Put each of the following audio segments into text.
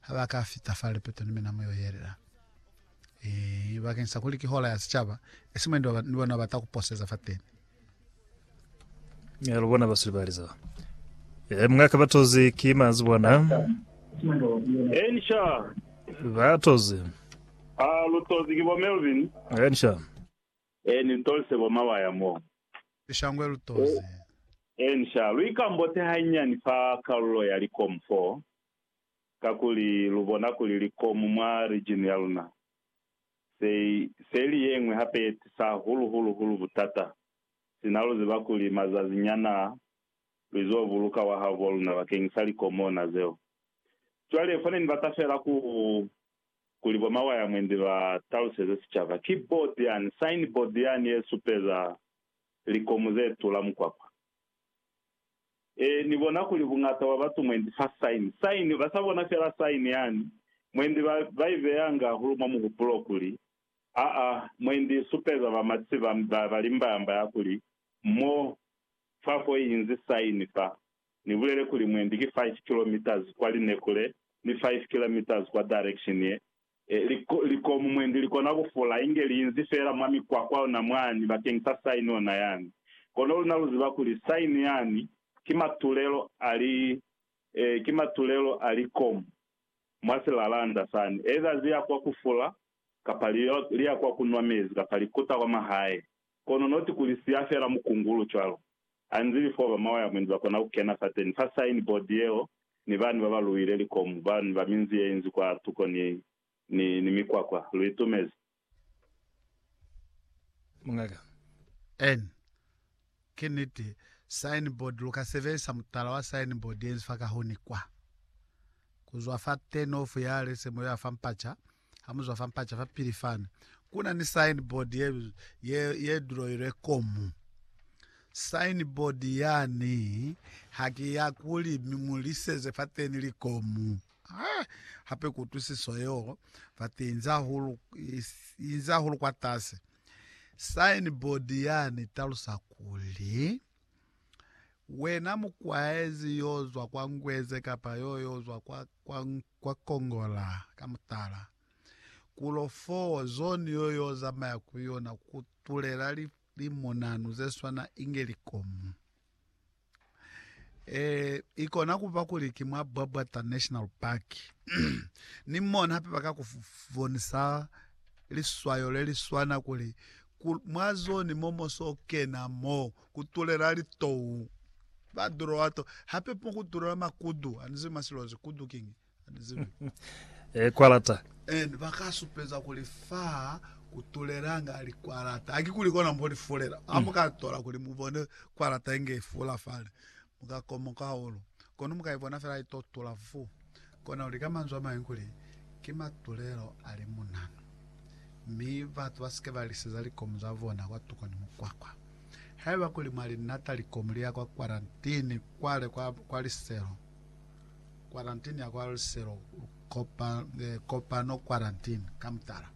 Ha ba ka fita fa lipeto ni mina mu yo yelela. Ee, bakeng sa kuli ki Hola ya Sicaba, e si mwendi wa ba, ni bona ba ta ku poseza fateni. Ya lubona basuli ba liza. E mungaka batozi ki mazi bona. Ensha. Batozi. A lutozi ki bo Melvin. Ensha. E ni tolise bo Mawaya mo. Lishangwe lutozi. Ensha. Lu ikambote hanyani fa kalulo ya likomu foo. kakuli lu bona kuli likomu mwa region ya luna se, se li yeñwi hape ye tisa hahulu hulu hulu butata, sina lu ziba kuli mazazi nyana a, lu izo buluka wahabo wa luna bakeñisa likomu ona zeo. Cwale, fo ne ni bata fela ku, kuli bo Mawayamwendi ba taluseze sicaba, ki board yani, sign board yani ye supeza likomu ze tula mukwakwa. Ee, Ni bona kuli buñata bwa batu mwendi fa sign, sign, ba sa bona fela sign yani, mwendi ba, ba i beya nga hahulu mwa muhupulo kuli, Aa, mwendi i supeza ba mati ba, ba, ba limbayamba ya kuli, Mo, fa ko i inzi sign fa. Ni bulele kuli mwendi ki five kilometres kwa lineko le, ni five kilometres kwa direction ye, Likomu mwendi likona kufula inge liinzi feela mwa mikwakwa ona mwani bakeng sa saini ona yani. Kono luna luziba kuli saini yani ki matulelo a li, ki matulelo a likomu mwa silalanda sani, eza ziya kwa kufula kapa liya kwa kunwa mezi kapa likuta kwa mahae. Kono not kuli siya fela mukungulu cwalo. Anzili foo ba mawa ya mwendi ba kona ku kena fateni fa sign board yeo ni bani ba ba luwile likomu, bani ba minzi ye inzi kwa tuko ni, ni, ni mikwakwa. Lu itumezi? Mungaka. En. Ki niti. Sign board, lu ka sebelisa mutala wa sign board ye inzi fa kahuni kwa. Ku zwa fa turn off ya lesemo ya fa mpaca, ha mu zwa fa mpaca fa pili fani, ku na ni signboard ye, ye, ye duloilwe komu. Signboard yani ha ki ya kuli mi ṅoliseze fateni likomu. Ha, hape kutwisiso yeo fati inzi hahulu, inzi hahulu kwatasi. Signboard yani talusa kuli. Wena mukwaezi yo zwa kwa Ngweze kapa yo yo zwa kwa, kwa, kwa Kongola, ka mutala, kulo foo, zone yo yo zamaya ku yona ku tulela li, limunanu ze swana inge likomu. E, i kona ku ba kuli ki mwa Bwabwata National Park. Ni mona hape ba ka ku bonisa liswayo le li swana kuli Ku mwa zone mo mo so kena mo ku tulela litou ba duloa to hape mo ku tulela makudu ani zibi masilozi kudu king ani zibi eh kwalata and ba ka supeza kuli fa ku tulelanga li kwalata haki kuli kona mo li fulela ha mo ka tola kuli mu bone kwalata inge fula fale Mu ka komoka hahulu, kono mu ka ibona fela i to tula vu. Kona kuli, ka manzwi a mañwi, kuli ki matulelo a limunanu, mi batu ba si ke ba liseza likomu za bona kwatuko ni mukwakwa. Haiba kuli mwa li nata likomu li ya kwa kwarantini kwale kwa, kwa liselo, kwarantini ya kwa liselo, kopa, eh, kopano kwarantini, ka mutala,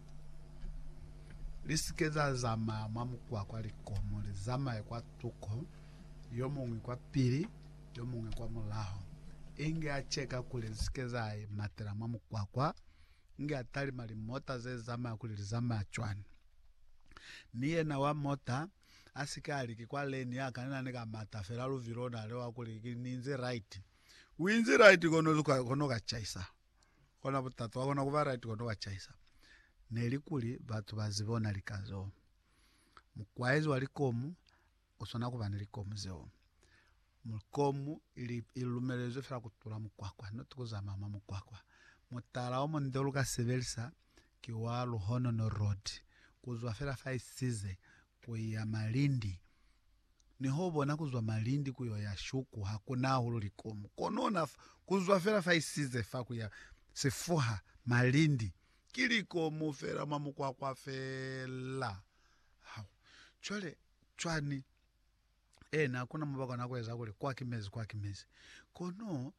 li si ke za zamaya mwa mukwakwa, likomu li zamaye kwatuko. yomuñwi kwa pili, yomuñwi kwa mulaho, inge a cheka kuli zisike za matela mwa mukwakwa, inge a talima limota ze zamaya kuli li zamaya cwani. Mi yena wa mota asike a li ki kwa lane ya kanena ni ka mata fela luvilo, ona lewa kuli ki ni inzi right. U inzi right kono zuka kono ka chaisa, kona butata, wa kona kuba right kono ka chaisa. Neli kuli batu ba zibe ona lika zo. Mukwaezi wa likomu u swana ku ba ni likomu zeo. Likomu ili i lumelezwe fela ku tula mukwakwa, not ku zamaya mwa mukwakwa. Mutala o munde u lu ka sebelisa ki wa Luhonono Road, ku zwa fela fa Isize ku ya Malindi. Niho u bona ku zwa Malindi ku yo ya Shuku ha ku na hahulu likomu. Kono'na fa, ku zwa fela fa Isize fa ku ya Sifuha, Malindi, ki likomu fela mwa mukwakwa fela. Hau! Cwale, cwani? Eena, hakuna mubakwa na kueza kuli, Kwa ki mezi, kwa ki mezi. Kono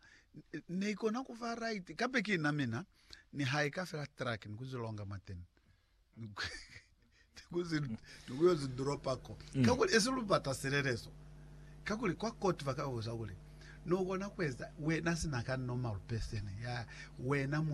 neikona kuba right. Kape ki na mina, nihaika fela truck ni kuzilonga mwateni, ni kuyo zi dropa ko. Mm. Kakuli esi lubata silelezo. Kakuli kwa court baka buza kuli, Nokona kueza, wena sina ka normal person, ya wena mutu,